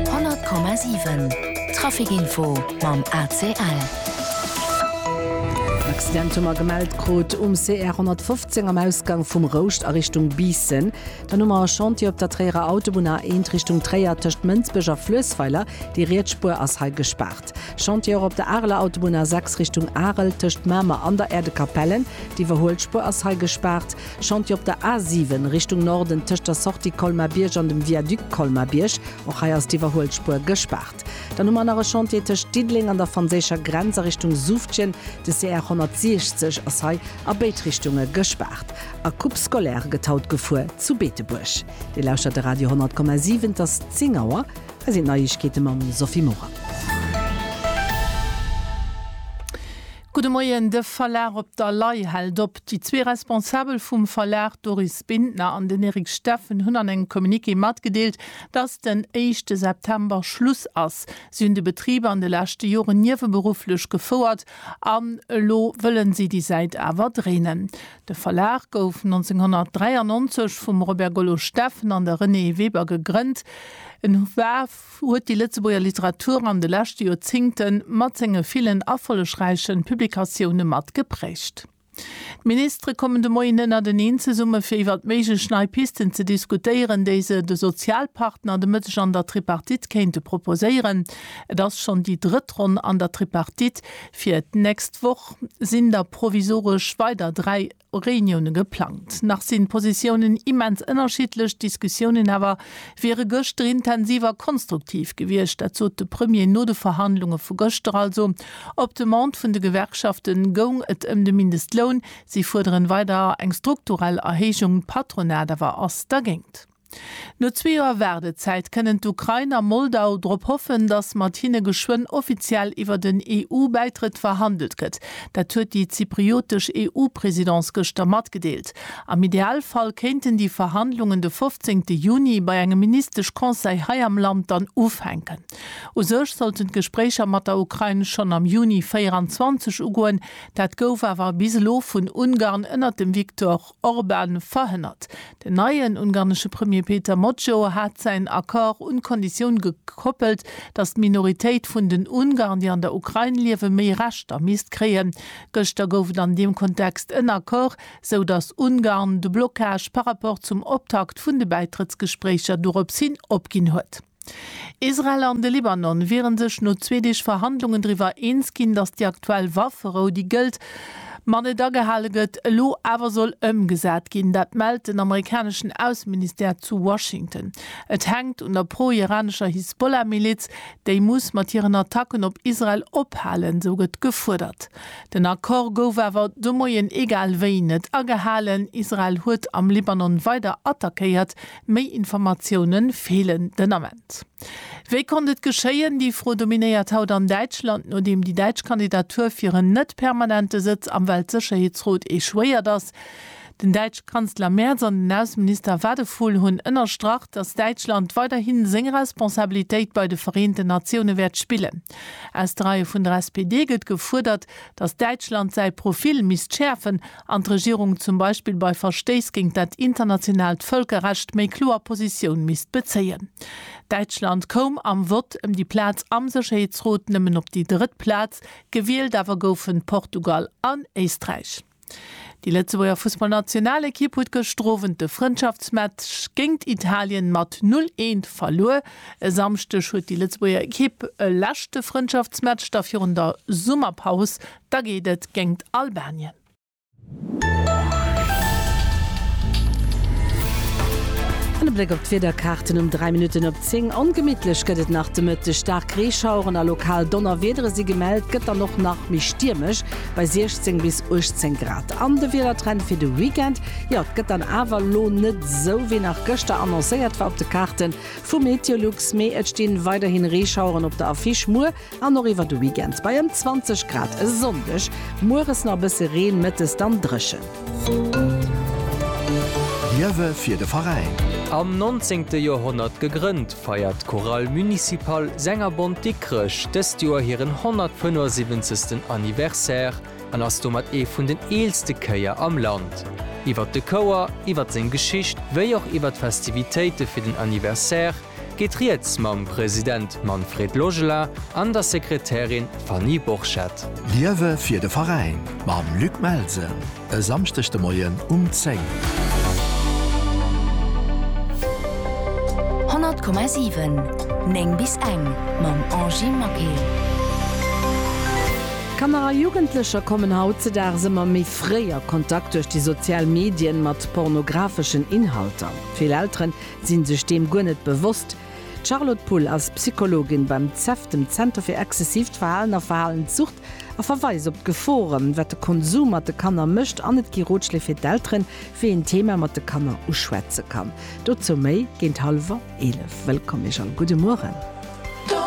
100,7 Traficinfo mam ACL. En Accident hu mer gemellt krut um CR 115 am Ausgang vum Rouscht a Richtung Biissen. Dann hu mer e Chantier op der Tréierer Autobunn A1 Richtung Tréier tëscht Mënsbech a Fluessweiler. Déi riets Spuer ass hei gespaart. Chantier och op der Areler Autobunn A6 Richtung Arel tëscht Mamer an der Äerdekapellen. Déi iwwerhuelt Spuer ass hei gespaart. Chantier op der A7 Richtung Norden tëscht der Sortie Colmar-Bierg an dem Viaduc Colmar-Bierg. Och hei ass d'Iwwerhuelspuer gespaart. Dann hu mer nach e Chantier tëscht Diddeleng an der franséischer Grenz a Richtung Suftjen. De CR 160 ass hei a béid Richtunge gespaart. A Coupe scolaire gëtt haut gefuer zu Beetebuerg. Dir lauschtert de Radio 10,7. Et ass 10 Auer. Hei sinn d'Neiegkeete mam Sophie Morang. Gudde Moien, De Verlag Op der Lay hält op. Déi zwee Responsabel vum Verlag, Doris Bintner an den Eric Steffen, hunn an engem Communiqué matgedeelt, dass den éischte September Schluss ass. Si hunn de Betrib an de leschte Joren nieweberufflech gefouert an elo wëllen si déi Säit awer dréinen. De Verlag gouf 1993 vum Robert Gollo-Steffen an der Renée Weber gegrënnt. En war. huet déi Lëtzebuerger Literatur an de leschte Joerzingte mat senge villen erfollegräiche Publikatioune mat geprägt. D'Ministere kommen de Moien ënnerteneen zesumme fir iwwert méiglech nei Pisten ze diskutéieren, déi se de Sozialpartner de Mëtteg an der Tripartite kéinte proposéieren. Et ass schonn déi drëtt Ronn an der Tripartite. Fir d'nächst Woch sinn da provisoresch weider dräi Reunioune geplangt. Nach sinn d'Positiounen immens ënnerschiddlech, d'Diskussiounen awer wiere gëschter intensiv a konstruktiv gewiescht. Dat sot de Premier no de Verhandlunge vu gëschter. Also op Demande vun de Gewerkschafte goung et ëm de Mindestloun. Si fuerderen weider eng strukturell Erhéijung, d'Patronat awer ass dergéint. No zwee Joer Waardezäit kënnen d'Ukrain a Moldau drop hoffen, datt mat hinne geschwënn offiziell iwwer den EU-Bäitrëtt verhandelt gëtt. Dat huet déi zypriotesch EU-Presidence gëschter matgedeelt. Am Idealfall kéinten déi Verhandlungen de 15 Juni bei engem Ministesch-Conseil hei am Land dann ufänken. U sech sollten d'Gespréicher mat der Ukrain schonn am Juni 24 ugoen. Dat gouf awer bis elo vun Ungarn ënner dem Viktor. Orban verhënnert. Den neien ungarnesche Premier Péter Mocso hat säin Accord un d'Konditioun gekoppelt, datt d'Minoritéit vun den Ungarn, déi an der Ukrain liewen, méi Rechter misst kréien. Gëschter gouf et an deem Kontext en Accord, sou datt Ungarn de Blockage par rapport zum Optakt vun de Bäitrëttsgespréicher dorops hin opginn huet. Israel an de Libanon wiere sech no zwee Deeg Verhandlungen driwwer eens ginn, datt déi aktuell Wafferou, déi gëllt, ma net agehale gëtt, elo awer soll ëmgesat ginn. Dat mellt den amerikaneschen Ausseministère zu Washington. Et hänkt un der pro-iranescher Hisbollah-Miliz, déi muss mat hiren Attacken op Israel ophalen, esou gëtt gefuerdert. Den Accord gouf awer de Moien egal wéi net agehalen. Israel huet am Libanon weider attackéiert, Méi Informatioune feelen den Ament. Wéi konnt et geschéien? Déi Fro dominéiert haut an Däitschland, nodeem déi däitsch Kandidatur fir en net permanente Sëtz am Weltsécherheetsrot echouéiert ass. Den däitsch Kanzler Merz an den Ausseminister Wadephul hunn ënnerstrach, datt Däitschland weiderhi seng Responsabilitéit bei de Vereenten Natioune wäert spillen. Aus de Reie vun der SPD gëtt gefuerdert, datt Däitschland säi Profil misst schäerfen an d'Regierung zum Beispill bei Verstéiss géint dat internationaalt Vëlkerrecht méi kloer Positioun misst bezéien. Däitschland koum am Vott ëm déi Plaz am Sécherheetsrot nëmmen op déi drëtt Plaz, gewielt awer goufen Portugal an Éisträich. Déi Lëtzebuerger Fussballnationalekipp huet gëschter Owend de Frëndschaftsmatch géint Italien mat 'null eent' verluer. E Samschdeg huet déi Lëtzebuerger Ekipp e leschte Frëndschaftsmatch da virun der Summerpaus Da geet et géingt Albanien. An e Bléck op d'Wiederkaarten um 3 Minutten op 10. Ongemittlech gëtt et nach de Mëtteg. Staark Reeschaueren a lokal Donnerwiedere si gemellt, gëtt dann och nach méi stiermesch bei 16 bis 18 Grad. An de Wiedertrend fir de Weekend, jo et gëtt dann awer elo net esou wéi nach gëschter annoncéiert war op de Kaarte vu MeteoLux, mee et stinn weiderhin Reeschaueren op der Affiche. Muer An och iwwer de Weekend bei ëm 20 Grad, e Sonndeg mueres nach e bësse Reen, mëttes dann dréchen. Liewe fir de Veräin! Am 19. Joerhonnert gegrënnt, feiert d'Chorale Municipale Sängerbond Dikrech dëst Joer hiren 175. Anniversaire an ass domat ee vun den eelste Chéier am Land. Iwwert de Chouer, iwwert seng Geschicht wéi och iwwert d'Festivitéite fir den Anniversaire, geet rieds mam President Manfred Logela an der Sekretärin Fanny Borchert. Liewe fir de Veräin mam Luc Melsen e Samschdeg de Moien um 10. 100,7 9 bis eng mam Angy Maquet. Kanner a Jugendlecher kommen hautzedags ëmmer méi fréi a Kontakt duerch déi sozial Medien mat pornographeschen Inhalter. Vill Elteren sinn sech deem guer net bewosst. D'Charlotte Pull ass Psychologin beim CEVT, dem Zenter fir exzessiivt Verhalen a Verhalenssucht, a verweist op d'Gefore wat de Konsum mat de Kanner mécht an et gi Rotschléi fir d'Elteren, wéi een d'Thema mat de Kanner uschwätze kann. Dozou méi géint hallwer 11. Wëllkomm Iech all, gudde Mueren.